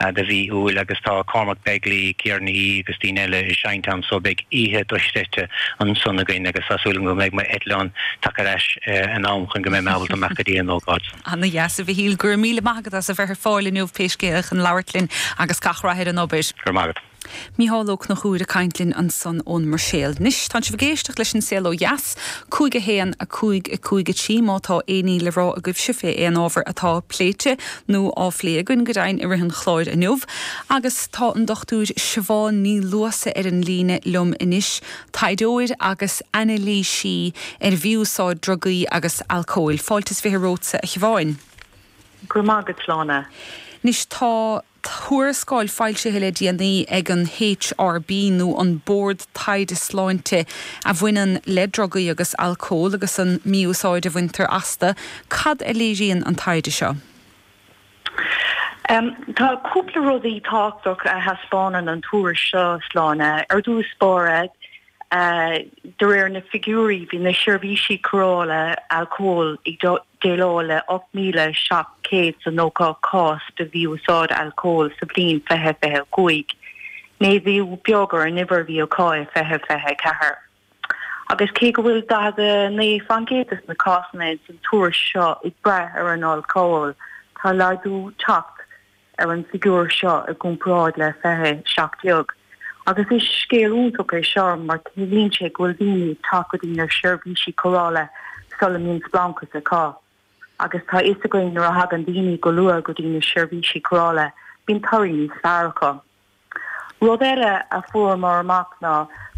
de mhí Iúil agus tá Cormac Begley, Ciara Ní É agus daoine eile ag seinnt ann so beidh oíche dochreidte ansan againn agus tá súil agam go mbeidh m'eitleán tagtha ar ais in am chun go mbeidh mé ábalta dul amach go dtí an ócáid san. Ana dheas, a Mhichíl. Go raibh míle maith agat as a bheith ar fáil inniu pé scéal chun labhairt linn agus gach rath ar an obair. Go raibh maith agat. Mícheál Ó Conchúir ag caint linn ansan ón mBruiséil. Anois, tánn sibh ag éisteacht leis An Saol Ó Dheas, 5 1, 5, 5, 3, má tá éinní le rá agaibh fé aon ábhar atá pléite nó á phlé againn go deimhin i rith an chláir inniu. Agus tá an Dr. Siobhán Ní Luasa ar an líne liom anois, taighdeoir agus anailísí ar mhí-úsáid drugaí agus alcóil. Fáilte is fiche romhatsa, a Shiobháin. Go raibh maith agat, a Shláine. Anois, tá. Tuarascáil foilsithe le déanaí ag an HRB, nó an Bord Taighde Sláinte, a bhaineann le drugaí agus alcól agus an mí-úsáid a bhaintear astu. Cad a léiríonn an taighde seo? Tá cúpla rudaí tábhachtach a thaispeánann an tuairisc seo, a Shláine, ar dtús báire, De réir na figiúirí, bhí na seirbhísí cóireála alcóil ag déileáil le 8,790 cás de mhí-úsáid alcóil sa bhliain 2025, méadú beag ar an uimhir a bhí acu i 2024. Agus cé go bhfuil 49 fán gcéad de na cásanna ins an tuairisc seo ag brath ar an alcól, tá laghdú ag teacht. ar an bhfigiúr seo i gcomparáid le 2017 agus is scéal iontach é seo mar ciallaíonn sé go bhfuil daoine ag teacht go dtí na seirbhísí cóireála sula mbíonn spleáchas acu agus tá a fhios againn nuair a thagann daoine go luath go dtí na seirbhísí cóireála bíonn toradh níos fearr acu. Rud eile a fuaireamar amach ná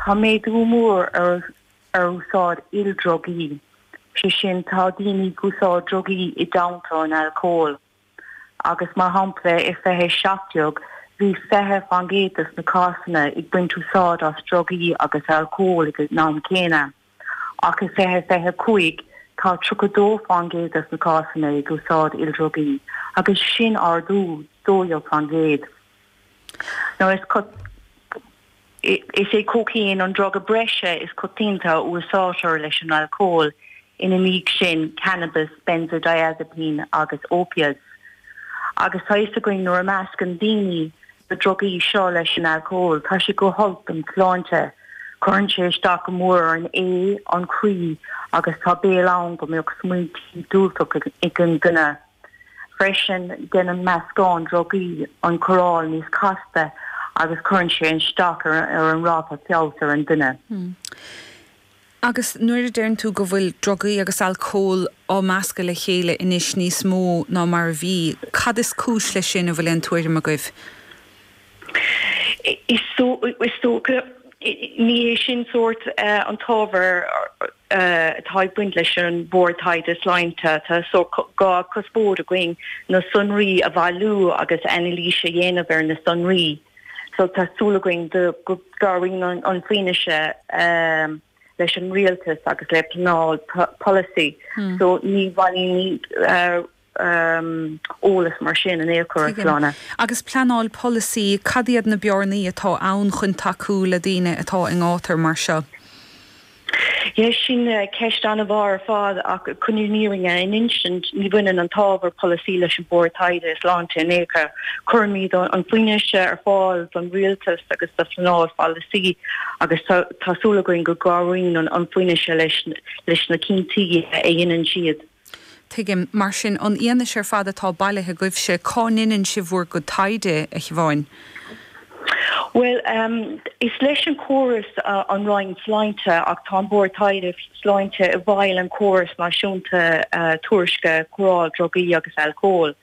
tá méadú mór ar úsáid ildrugaí, sé sin tá daoine ag úsáid drugaí i dteannta an alcóil. agus mar shampla i 2017 bhí 20 fán gcéad de na cásanna ag baint úsáid as drugaí agus alcól ag an am céanna, ach i 2025 tá 32 fán gcéad de na cásanna ag úsáid ildrugaí, agus sin ardú 12 fán gcéad. Anois, is é cócaon an druga breise is coitianta a úsáidtear leis an alcól, ina dhiaidh sin cannabas, benzodiazepine agus opiates, agus tá a fhios againn nuair a mheascann daoine na drugaí seo leis an alcól tá sé go holc don tsláinte, cuireann sé isteach go mór ar an ae, an croí, agus tá baol ann go mbeadh smaointí diúltach ag an duine. Freisin, déanann meascán drugaí an chóireáil níos casta agus cuireann sé isteach ar an ráta feabhais ar an duine. Agus nuair a deireann tú go bhfuil drugaí agus alcól á meascadh le chéile anois níos mó ná mar a bhí, cad is cúis leis sin, an bhfuil aon tuairim agaibh? Is dócha, ní hé sin sórt an t-ábhar atá ag baint leis an Bhord Taighde Sláinte. Tá dhá chuspóir againn, na sonraí a bhailiú agus anailís a dhéanamh ar na sonraí. So tá súil againn go gcabhraíonn an fianaise leis an rialtas agus le pleanáil polasaí. So ní bhailímid eolas mar sin in aon chor. Sláine. Agus pleanáil polasaí, cad iad na bearnaí atá ann chun tacú le daoine atá i ngátar mar seo? Yes, sin ceist an-mhaith ar fad ach chun an fhírinne a insint, ní bhaineann an t-ábhar polasaí leis an Bhord Taighde Sláinte in aon chor. Cuirimid an fhianaise ar fáil don rialtas agus do phleanáil polasaí agus tá súil againn go gcabhraíonn an fhianaise leis na cinntí a dhéanann siad. Tuigim, mar sin, an fhianaise ar fad atá bailithe agaibhse. Cá ndeineann sibh bhur gcuid taighde, a Thiobháin? Bhuel, is leis an córas an Roinn Sláinte ach tá an Bord Taighde Sláinte i bhfeighil an córas náisiúnta tuairisce cóireáil drugaí agus alcóil.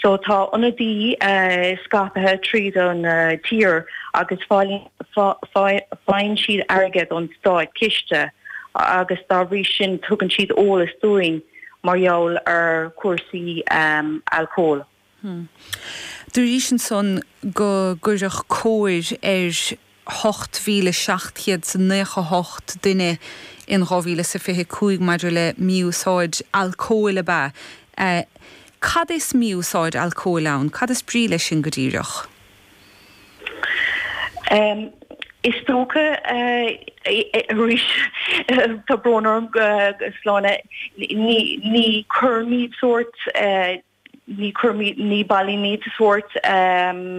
So tá ionaid scaipthe tríd an tír agus faillíonn faigheann siad airgead ón státchiste agus dá bhrí sin tugann siad eolas dúinn mar gheall ar chúrsaí alcóil. Deir sibh ansan gur cuireadh cóir ar 8,700 is a nócha hocht duine in dhá mhíle is a fiche is cúig maidir le mí-úsáid alcóil ab ea é. Cad is mí-úsáid alcóil ann? Cad is brí leis sin go díreach? Is dócha arís, tá brón orm, Sláine, ní chuirimid sórt, ní chuirimid, ní bhailímid sórt.